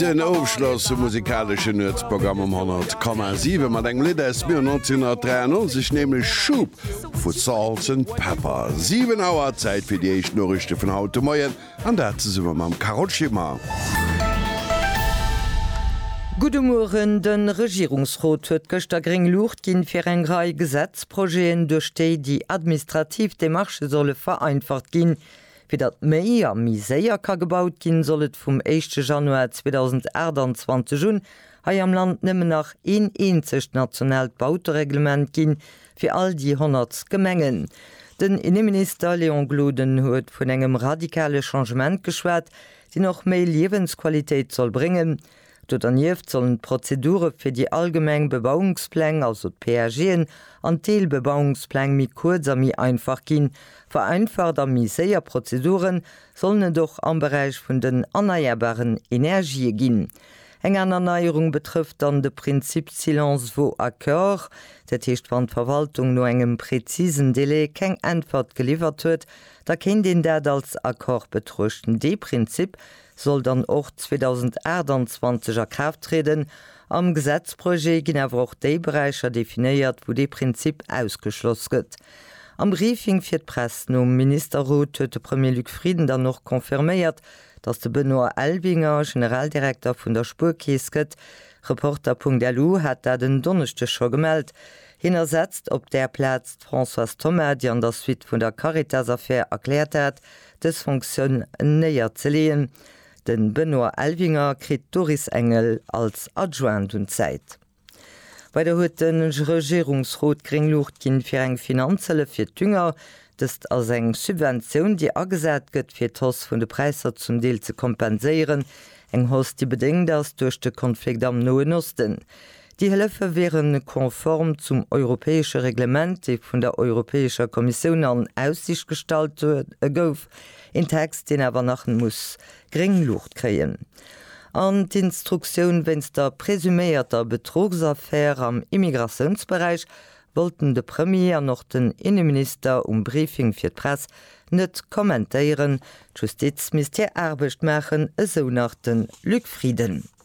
Den Ofschloss vum musikaleschen Nuetsprogramm um 100,7 mat engem Lidd aus dem Joer 1993, nämlech Shoop vu Salt and Pepper. 7 Auer, Zäit fir déi éischt Noriichte vun haut de Moien, an dat zesumme mam Carole Schimmer. Gudde Mueren, De Regierungsrot huet gëschter gréng Luucht ginn, fir eng Rei Gesetzprojeten, duerch déi déi administrativ Demarchë solle vereinfacht ginn, Fir datt méi a méi séier ka gebaut ginn, soll et vum éischte Januar 2028 un hei am Land nëmmen nach een eenzegt nationaalt Bautereglement ginn, fir all déi 100 Gemengen. Den Inneminister Léon Gloden huet vun engem radikale Changement geschwat, deen och méi Liewensqualitéit soll bréngen. Do dernieft sollen d'Prozedure fir déi allgemeng Bebauungspläng, also d'PAGen, an d'Deelbebauungspläng méi kuerz a méi einfach ginn. Vereinfacht a méi séier Prozedure sollen et och am Beräich vun den erneierbaren Energië ginn. Eng aner Neierung betrëfft dann de Prinzip Silence vaut accord. Dat heescht, wann d'Verwaltung no engem prezisen Delai keng Äntwert geliwwert huet, da kéint een dat als Accord betruechten. Dee Prinzip soll dann och 2028 a Kraaft trieden. Am Gesetzprojet ginn awer och déi Beräicher definéiert, wou dee Prinzip ausgeschloss gëtt. Am Briefing fir d'Press nom Ministerrot huet de Premier Luc Frieden dann och confirméiert, datt de Benoît Elvinger Generaldirekter vun der Spuerkeess gëtt. Reporter.lu hat dat en Donneschdeg scho gemellt. Hien ersetzt op där Plaz d'Françoise Thoma, déi an der Suite vun der Caritas-Affär erkläert hat, dës Fonctioun néier ze leeën. De Benoît Elvinger kritt d'Doris Engel als Adjoint un d'Säit. Weider huet de Regierungsrot gréng Luucht ginn, fir eng Finanzhëllef fir d'Dünger, dëst ass eng Subventioun, déi agesat gëtt, fir d'Hausse vun de Präisser zum Deel ze kompenséieren, eng Hausse, déi bedéngt ass duerch de Konflikt am Noen Osten. Déi Hëllefe wiere konform zum europäesche Reglement, dee vun der Europäescher Kommissioun an Aussicht gestallt gouf, een Text, deen awer nach muss gréng Luucht kréien. An d'Instruktioun wéinst der presuméierter Betruchsaffär am Immigratiounsberäich wollten de Premier an och den Inneminister um Briefing fir d'Press net kommentéieren. D'Justiz misst hir Aarbecht maachen, esou nach de Luc Frieden.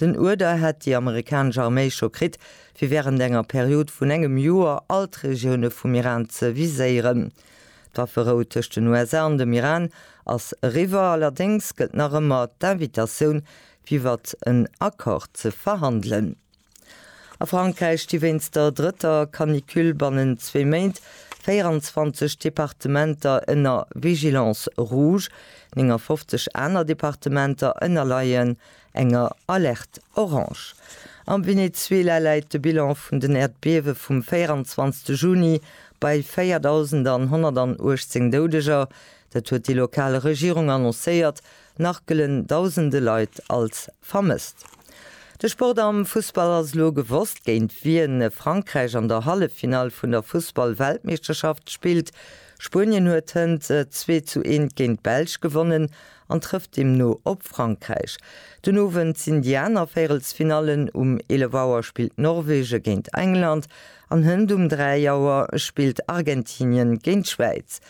Den Uerder hätt déi amerikanesch Arméi scho kritt, fir wärend enger Period vun engem Joer all d'Regioune vum Iran ze viséieren. D'Wafferou tëscht den USA an dem Iran ass eriwwer, allerdéngs gëllt nach ëmmer d'Invitatioun, fir iwwer en Accord ze verhandelen. A Frankräich sti wéinst der drëtter Canicule bannent zwee Méint 24 Departementer ënner Vigilance rouge, 59 aner Departementer ënnerleien enger Alerte orange. Am Venezuela läit de Bilan vun den Äerdbiewe vum 24 Juni bei 4.118 Doudeger, dat huet déi lokal Regierung annoncéiert, nach gëllen dausende Leit als vermësst. De Sport am Fussball ass elo gewosst, géint wien Frankräich an der Halleffinall vun der Fussball-Weltmeeschterschaft spillt. Spuenien huet hënt 2 zu 1 géint d'Belsch gewonnen an trëfft deemno op Frankräich. Den Owend sinn déi aner Véirelsfinallen, um 11 Auer spillt Norwege géint England an Hënt um 3 Auer spillt Argentinien géint d'Schwäiz.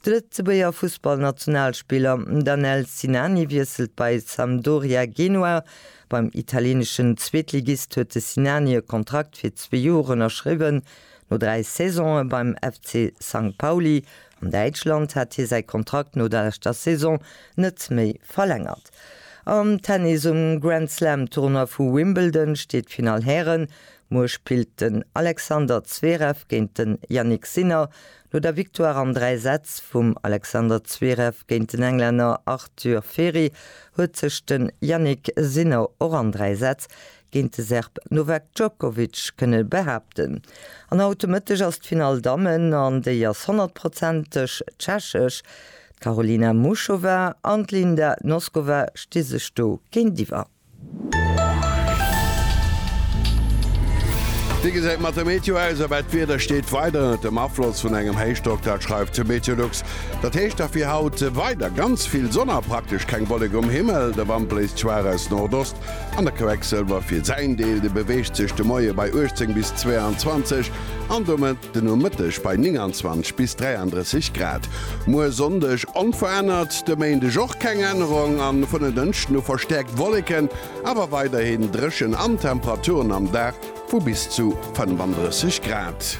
De Lëtzebuerger Fussballnationalspiller Danel Sinani wiesselt bei Sampdoria Genua. Beim italieneschen Zweetligist huet de Sinani e Kontrakt fir zwee Joer ënnerschriwwen. No dräi Saisonë beim FC St. Pauli An Däitschland hat hie säi Kontrakt no der leschter Saison net méi verlängert. Am Tennis um Grand Slam Tournoi vu Wimbledon steet d'Finall Hären. Muer spillt den Alexander Zverev géint den Jannik Sinner. No der Victoire an 3 Sätz vum Alexander Zverev géint den Englänner Arthur Feri huet sech den Jannik Sinner och an 3 Sätz géint de Serb Novak Djokovic kënne behaapten. An haut de Mëtteg ass d'Finall Dammen an déi ass honnertprozenteg tschechesch. D'Karolina Muchova an d'Linda Noskova sti sech do géintiwwer. Wéi gesäit mat der Meteo aus a wat d'Wieder steet weider ënnert dem Afloss vun engem Héichdrock? Dat schreift de Meteolux. Dat heescht da fir haut weider ganz vill Sonn a praktesch keng Wolleke um Himmel. De Wand bléist schwaach aus Nordost. An der Quecksëlwer fir säin Deel, de beweegt sech de Moie bei 18 bis 22 an domat de Nomëtteg bei 29 bis 33 Grad. Muer Sonndeg onverännert, de Méindeg och keng Ännerung a vun en Dënschden u verstäerkt Wolleken, awer weiderhin dréchen an Temperaturen am Dag vu bis zu 35 Grad.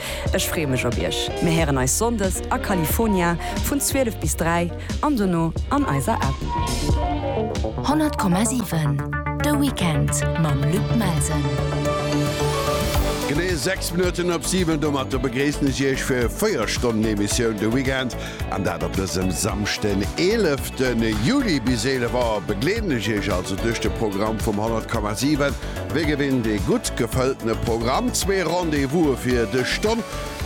Ech freeë mech op iech. Mir héieren eis Sonndes a California vun 12 bis 3 an dono an eiser App. 100,7 De Weekend mam Luc Melsen. Genee 6 Minutten op 7. Domatter begréissen ech iech fir 4 Stonnen Emissioun de Weekend, an dat op dësem Samschden, 11. Juli. Bis 11 Auer begleeden ech iech also duerch de Programm vum 100,7. Wéi gewinnt ee gutt gefëlltene Programm? Zwee Rendez-Vouse fir dës Stonn.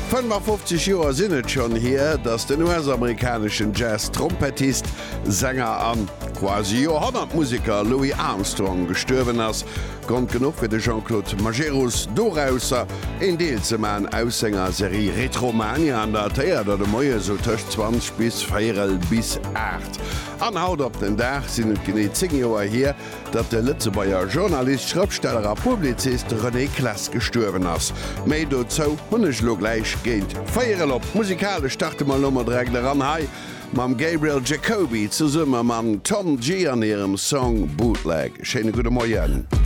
55 Joer sinn et schonn hier, datt den US-amerikaneschen Jazz-Trompettist, Sänger a quasi Joerhonnert-Museker Louis Armstrong gestuerwen ass. Grond genuch fir de Jean-Claude Majerus dorausser een Deel ze maachen aus senger Serie Retromania an der Théater de Moien esou tëscht 20 bis véierel bis 8. An haut op den Dag sinn et genee 10 Joer hier, datt de Lëtzebuerger Journalist, Schrëftsteller a Publizist René Claes gestuerwen ass. Méi dozou hunn ech elo gläich géint véier erop. Musikalesch starte mer elo mol direkt eran hei mam Gabriel Jacoby zesumme mam Tom Gee an hirem Song Bootleg. Schéine gudde Moien.